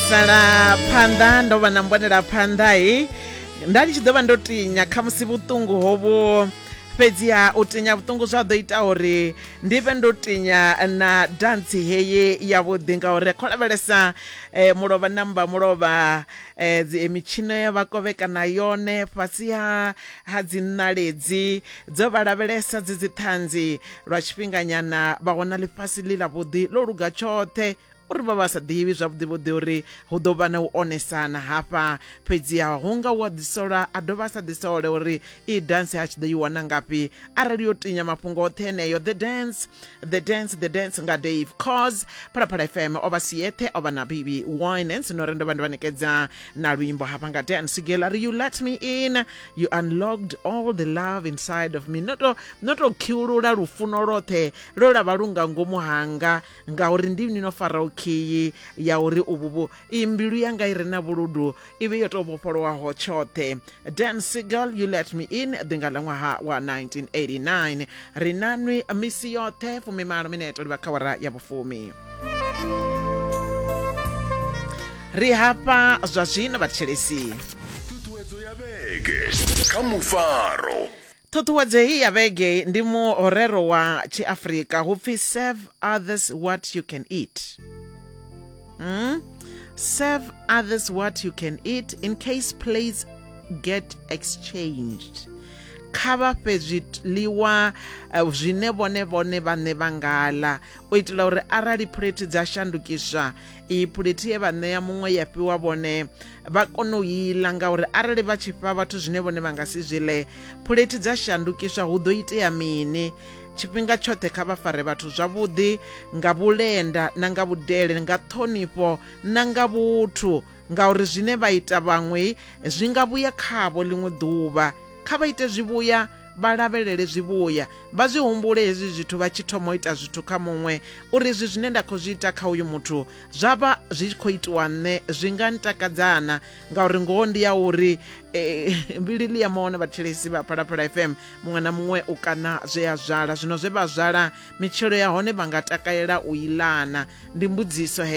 sala phanḓa ndo vha na mbonela phanḓa he nda ndi tshi ḓo vha ndo tinya kha musi vhuṱungu hovho fhedziha u tinya vhuṱungu zwa ḓo ita uri ndi vhe ndo tinya na dantsi heyi yavhuḓi ngauri kho lavhelesa eh, mulovha namba mulovha eh, dzi- eh, mitshino ya vha kovhekana yone fhasi ha ha dzi ṋaledzi dzo vha lavhelesa dzi dzi ṱhanzi lwa tshifhinganyana vha wana ḽifhasi ḽi ḽavhuḓi ḽo luga tshoṱhe uri vha vha sa ḓivhi zwavhuḓi vhuḓi uri hu ḓo vha na u onesana hafha fhedziha hu nga u a ḓisola a dovha a sa ḓisole uri i dance a tshi ḓo i wana ngafhi arali yo tinya mafhungo oṱhe eneyo the dance the dance the dance nga dave cause phalaphala fm o vha si yeṱhe o vha na bibi winans no ri ndo vha ndi vha nekedza na luimbo hafha nga dance gela ri you let me in you unlocked all the love inside of me no to no to khiulula lufuno lwoṱhe lwo lavha lu nga ngomu hanga ngauri ndi ni no faraho khiyi ya uri uvhu vhu iyi mbilu yanga i re na vhuludu i vhe yo tou vhofholowaho tshoṱhe dan sigal you let me in ḓinga ḽa ṅwaha wa 1989 ri na nwi misi yoṱhe fumimalo mineto livha kha wara ya vhufumi ri hafha zwa zwino vhathetshelesi ṱhuṱhuwedzo ya vhege kha mufaro Ṱhuṱhuwedzo heyi ya vhege ndi muhorero wa Tshiafrika hu pfi serve others what you can eat. Hmm? Serve others what you can eat in case plates get exchanged. kha vha fhe zwiḽiwa eh, zwine vhone vhone vhaṋe vha nga ḽa u itela uri arali phuleti dza shandukiswa iyi phulethi ye vha ṋea muṅwe ya fhiwa vhone vha kone u iḽa ngauri arali vha tshi fha vhathu zwine vhone vha nga si zwi ḽe phulethi dza shandukiswa hu ḓo itea mini tshifhinga tshoṱhe kha vha fare vhathu zwavhuḓi nga vhulenda na nga vhudele nga ṱhonifho na nga vhuthu ngauri zwine vha ita vhaṅwe zwi nga vhuya khavho ḽiṅwe ḓuvha kha vha ite zwivhuya vha lavhelele zwivhuya vha zwi humbule hezwi zwithu vha tshi thoma u ita zwithu kha muṅwe uri izwi zwine nda khou zwi ita kha uyu muthu zwa vha zwi tshi khou itiwa nṋe zwi nga ntakadzana ngauri ngoho ndi ya uri eh, mbilili ya maone vhathelesi vha phalaphala fm muṅwe na muṅwe u kana zwe a zwala zwino zwe vha zwala mitshelo ya hone vha nga takalela u ilana ndi mbudziso heyo